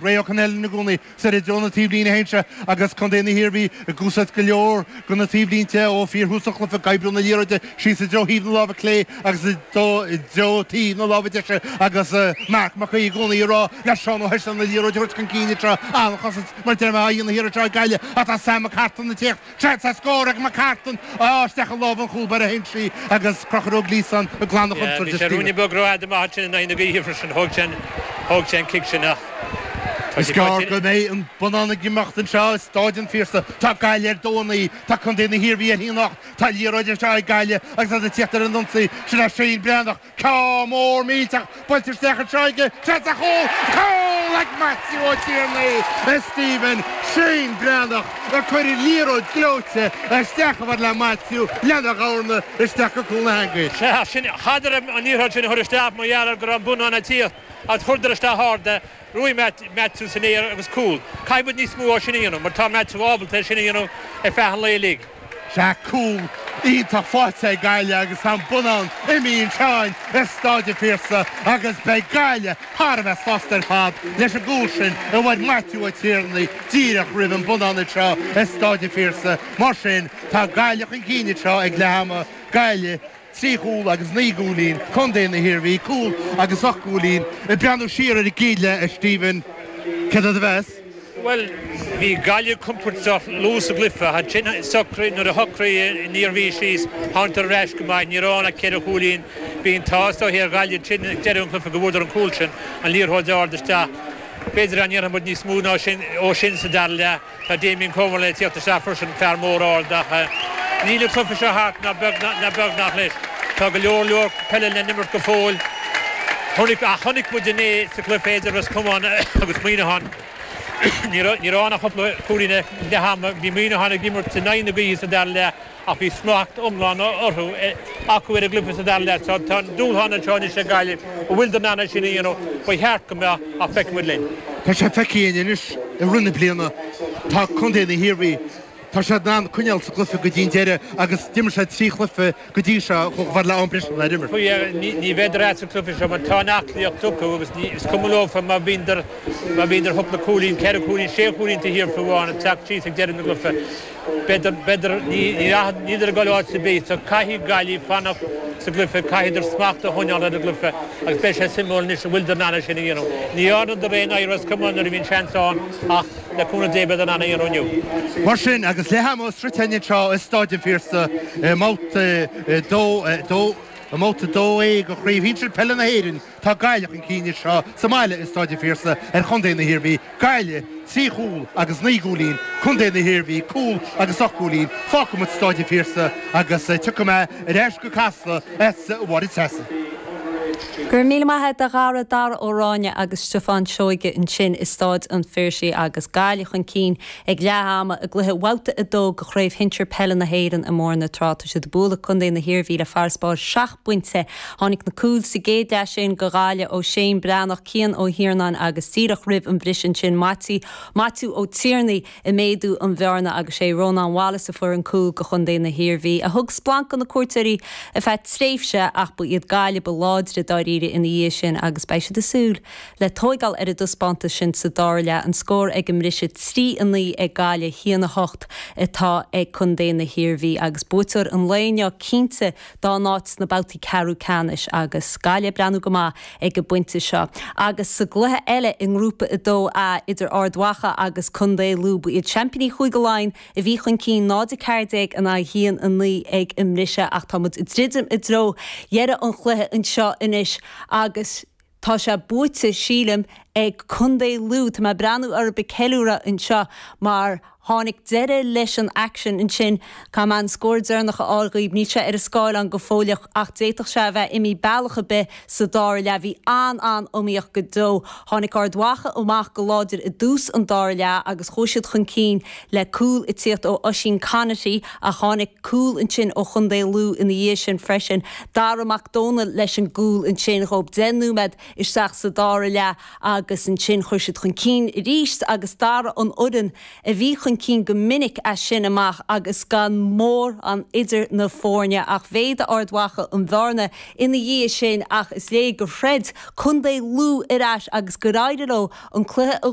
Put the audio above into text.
Ray Connellan i gcónaí soir i dtreo na taobhlíne féin seo agus contae na hIarmhí ag úsáid go leor de na taobhlínte ó fhíorthús an chluiche ag oibriú na liathróide síos i dtreo thaobh na láimhe clé agus i dtreo taobh na láimhe deise agus Marc Mac Aoidh i gcónaí ag rá le Seán Ó hEislin an liathróid a thabhairt chun cinn i dtreo an chosaint mar deartháir a fhaigheann na hiarraidh seo ag Gaillimh ach tá Sam McCartan ag teacht Seans ar scór ag McCartan ach isteach i lámha an chúl báire anseo agus Conchúr Gleeson ag glanadh chonsaird de Stephen. Bhí sé rúinne beag rófhada amach ansin in aghaidh na gaoithe freisin. Thóg sé an cic sin ach tá sé continn. Is gearr go mbeidh an bonnán ag imeacht anseo i Stáid an Phiarsaigh. Tá Gaillimh ar dó naoi, tá Contae na hIarmhí ar haon ocht, tá liathróid anseo ag Gaillimh agus iad ag tíocht ar an ionsaí. Sin é Shane Breathnach. Cic mór millteach buailte isteach aige, tá sé sa chúl, cúl, ag Maitiú Ó Tiarnaigh, a Stephen Shane Breathnach, a chuir an liathróid ghleoite isteach i bhfad le Maitiú lena dhorn isteach go cúl na heangaí. Sea, sin, chaitheadar an liathróid sin a chur isteach mar gheall ar go raibh an bonnán ag tíocht, ach chuireadar isteach ard é Ghnóthaigh Maitiú san aer agus cúl. Caithfidh muid níos mó dhó sin a dhéanamh mar tá Maitiú ábalta é sin a dhéanamh ar feadh an lae uilig. Tá cúl iontach faighte ag Gaillimh agus tá an bonnán imithe anseo i Stáid an Phiarsaigh agus beidh Gaillimh thar a bheith sásta ar fad leis an gcúl sin a bhain Maitiú Ó Tiarnaigh díreach roimh an bonnán anseo i Stáid an Phiarsaigh. Mar sin, tá Gaillimh chun cinn anseo ag leath ama, Gaillimh. trí chúl agus naoi gcúilín, Contae na hIarmhí, cúl agus ocht gcúilín, ag breathnú siar ar an gcéad leath, a Stephen, céard é do mheas? Bhuel, bhí Gaillimh compordach luath sa gcluiche, ansin nuair a shocraigh an Iarmhí síos, thángadar ar ais go maith, ní raibh ann ach ceithre chúilín, bhí an t-ádh is dóigh ar Ghaillimh, ansin ag deireadh an chluife go bhfuaradar an cúl sin, an liathróid ard isteach, b'fhéidir dá ndéanfadh muid níos mó dhó sin sa dara leath. Tá Damien Comer le tíocht isteach freisin, fear mór ard ach níl an cluiche seo thart ná beagnach leis. Tá go leor leor peile le n-imirt go fóill ach chonaic muid inné sa gcluiche idir Ros Comáin agus Muineachán, ní raibh ann ach cúpla cúilín ag leath ama, bhí Muineachán ag imirt in aghaidh na gaoithe sa dara leath. ach bhí smacht iomlán orthu, acu ar an gcluiche sa dara leath. Tá an dúshlán anseo anois ag Gaillimh, an bhfuileadar in ann é sin a dhéanamh? Ba cheart go mbeadh, ach feicfidh muid linn. Tá sé feicthe againn anois i rith na bliana, tá contae na hIarmhí, tá siad in ann coinneáil sa gcluiche go dtí an deireadh agus d'imir siad trí chluiche go dtí seo a chuaigh go ham breise nár imir. Ní bheidar as an gcluiche seo mar tá an aclaíocht acu agus is cuma leofa má bhíondar cúpla cúilín, ceithre chúilín, sé chúilín taobh thiar fiú amháin, ag teacht síos ag deireadh an chluiche. B'fhéidir, b'fhéidir, ní, ní rachadh, níleadar ag goil áit ar bith, so caithfidh Gaillimh fanacht sa gcluiche, caithfidar smacht a choinneáil ar an gcluiche agus beidh sé suimiúil anois an bhfuileadar in ann é sin a dhéanamh. Ní dhearnadar é in aghaidh Ros Comáin nuair a bhí an seans ann ach, le cúnamh Dé, beidar in ann é a dhéanamh inniu. Mar sin, agus leath ama sroichte againn anseo i Stáid an Phiarsaigh i mBabhta 2A de Chraobh Shinsir Peile na hÉireann, Tá Gaillimh chun cinn anseo sa mbaile i Stáid an Phiarsaigh ar chontae na hIarmhí, Gaillimh, trí chúl agus naoi gcúilín, contae na hIarmhí, cúl agus ocht gcúilín, fágfaidh muid Stáid an Phiarsaigh agus tiocfaidh mé ar ais go Casla a Mháire Treasa. Go raibh míle maith agat a Dhara, Dara Ó Ráinne agus Stiofán Seoige ansin i Stáid an Phiarsaigh agus Gaillimh chun cinn ag leath ama i gcluiche Bhabhta 2 de Chraobh Shinsir Peile na hÉireann i mBóthar na Trá. Tá siad ag bualadh contae na hIarmhí le farasbarr bpointe. Tháinig na cúil sa gcéad leath sin do Ghaillimh ó Shéan Breathnach, Cian Ó hIarnáin agus díreach roimh an bhriseadh ansin, Maití, Maitiú, Ó Tiarnaigh ag méadú an bhearna agus sé Rónán Wallace a fuair an cúl do chontae na hIarmhí, a thug splanc do na cuairteoirí ar feadh tréimhse ach ba iad Gaillimh ba láidre dáiríre ina dhiaidh sin agus beidh siad ag súil le tóigeáil ar an dtaispeántas sin sa dara leath. An scór ag an mbriseadh, 3, 9 ag Gaillimh, 1, 8 atá ag contae na hIarmhí agus buaiteoir an lae inniu cinnte dá n-áit sna babhtaí ceathrú ceannais agus Gaillimh ag breathnú go maith ag an bpointe seo. Agus sa gcluiche eile i nGrúpa 2A idir Ard Mhacha agus contae Lú, ba iad seaimpíní Chúige Laighean a bhí chun cinn, 0-14 in aghaidh 1-9 ag an mbriseadh, ach tá muid ag druidim i dtreo dheireadh an chluiche anseo anois agus, Tá sé buaite, sílim, ag Contae Lú. Tá mé ag breathnú orthu ag ceiliúradh anseo mar tháinig deireadh leis an aicsean ansin. Caithfidh mé an scór deireanach a fháil dhaoibh. Níl sé ar an scáileán go fóilleach ach d'fhéadfadh sé a bheith imithe bealach ar bith sa dara leath. Bhí an-an-iomaíocht go deo. Tháinig Ard Mhacha amach go láidir i dtús an dara leath agus chuaigh siad chun cinn. le cúl ag tíocht ó Oisín Conaty ach tháinig cúl ansin ó Chontae Lú ina dhiaidh sin freisin, Dara McDonnell leis an gcúl ansin dhóib deich nóiméad isteach sa dara leath agus ansin chuir sé iad chun cinn arís agus d'athraigh an fhoireann a bhí chun cinn go minic as sin amach agus gan mórán idir na foirne ach mhéadaigh Ard Mhacha an bhearna ina dhiaidh sin ach is léir gur throid Contae Lú ar ais agus gur éirigh leo an cluiche a